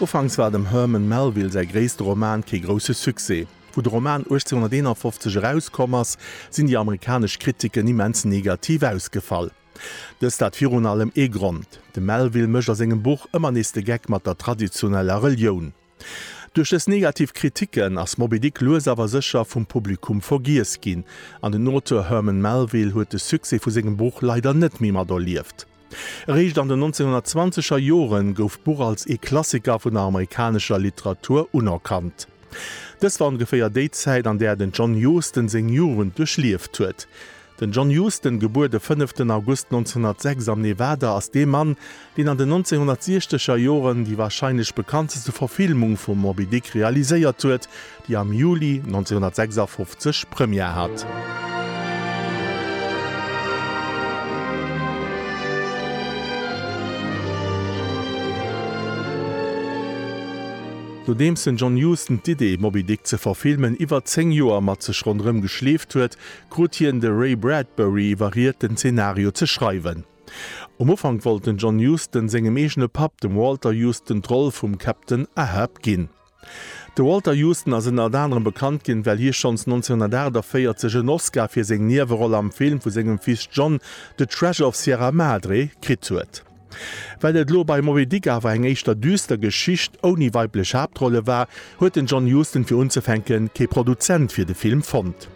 Ufanks war dem Herman Melville säi gréisste Roman kee grousse Succès. Wou de Roman 1851 erauskomm ass, sinn déi amerikanesch Kritiken immens negativ ausgefall. Dëst hat virun allem ee Grond, De Melville mécht a sengem Buch ëmmer nees de Geck mat der traditioneller Relioun. Duerch dës negativ Kritiken ass Moby Dick lues awer sécher vum Publikum vergiess ginn, an den Auteur Herman Melville huet de Succès vu sengem Buch leider net méi materlieft. Eréischt an den 1920er Jore gouf d'Buch als ee Klassiker vun der amerikanescher Literatur unerkannt. Dës war ongeféier déi Zäit, an där den John Huston seng Jugend duerchlieft huet. Den John Huston, gebuer de 5 den August 1906 am Nevada, ass dee Mann, deen an den 1960 er Joren déi warscheinlech bekannteste Verfilmung vum Moby Dick realiséiert huet, déi am Juli 1956 Première hat. Nodeems den John Huston d'Idee, Moby Dick ze verfilmen, iwwer zéng Joer mat sech ronderëm geschleeft huet, krut hien de Ray Bradbury iwwerriet, den Zenario ze schreiwen. Um Ufank wollt den John Huston sengem eegene Papp, dem Walter Huston, d'Roll vum Captain Ahab ginn. De Walter Huston ass ënnert anerem bekannt ginn, well hie schonns 1948 en Oscar fir seng Nieweroll am Film vu sengem Fils John, The Treasure of Sierra Madre, kritt huet. Well et elo bei Moby Dick awer eng éischter düster Geschicht ouni weiblech Haaptrolle war, huet den John Huston fir unzefänke kee Produzent fir de Film fonnt.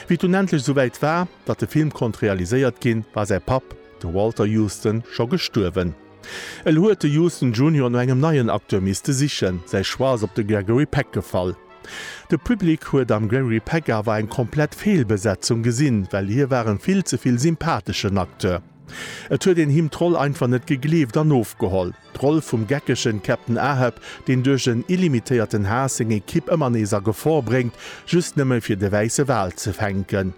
Wéi et dunn endlech esouwäit war, datt de Film konnt realiséiert ginn, war säi Papp, de Walter Huston, scho gestuerwen. Elo huet de Huston Junior no engem neien Acteur misste sichen. Säi Choix ass op de Gregory Peck gefall. De Public huet am Gregory Peck awer eng komplett Feelbesetzung gesinn, well hie war en vill ze vill sympatheschen Acteur. Et huet een him d'Roll einfach net gegleeft an ofgeholl. D'Roll vum geckegen Captain Ahab, deen duerch en illimitéierten Haass seng Ekipp ëmmer nees a Gefor bréngt, just nëmme fir de wäisse Wal ze fänken.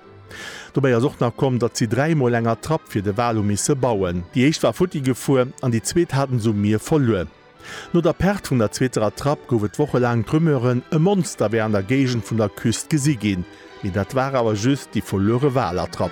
Dobäi ass och nach komm, datt si dräi Mol eng Attrapp fir de Wal hu misse bauen. Déi éischt war futti gefuer an déi zweet haten se um Mier verluer. No der Perd vun der zweeter Attrapp gouf et wochelaang d'Rumeuren, e Monster wär an der Géigend vun der Küst gesi ginn. Mee dat war awer just déi verluere Wal-Attrapp.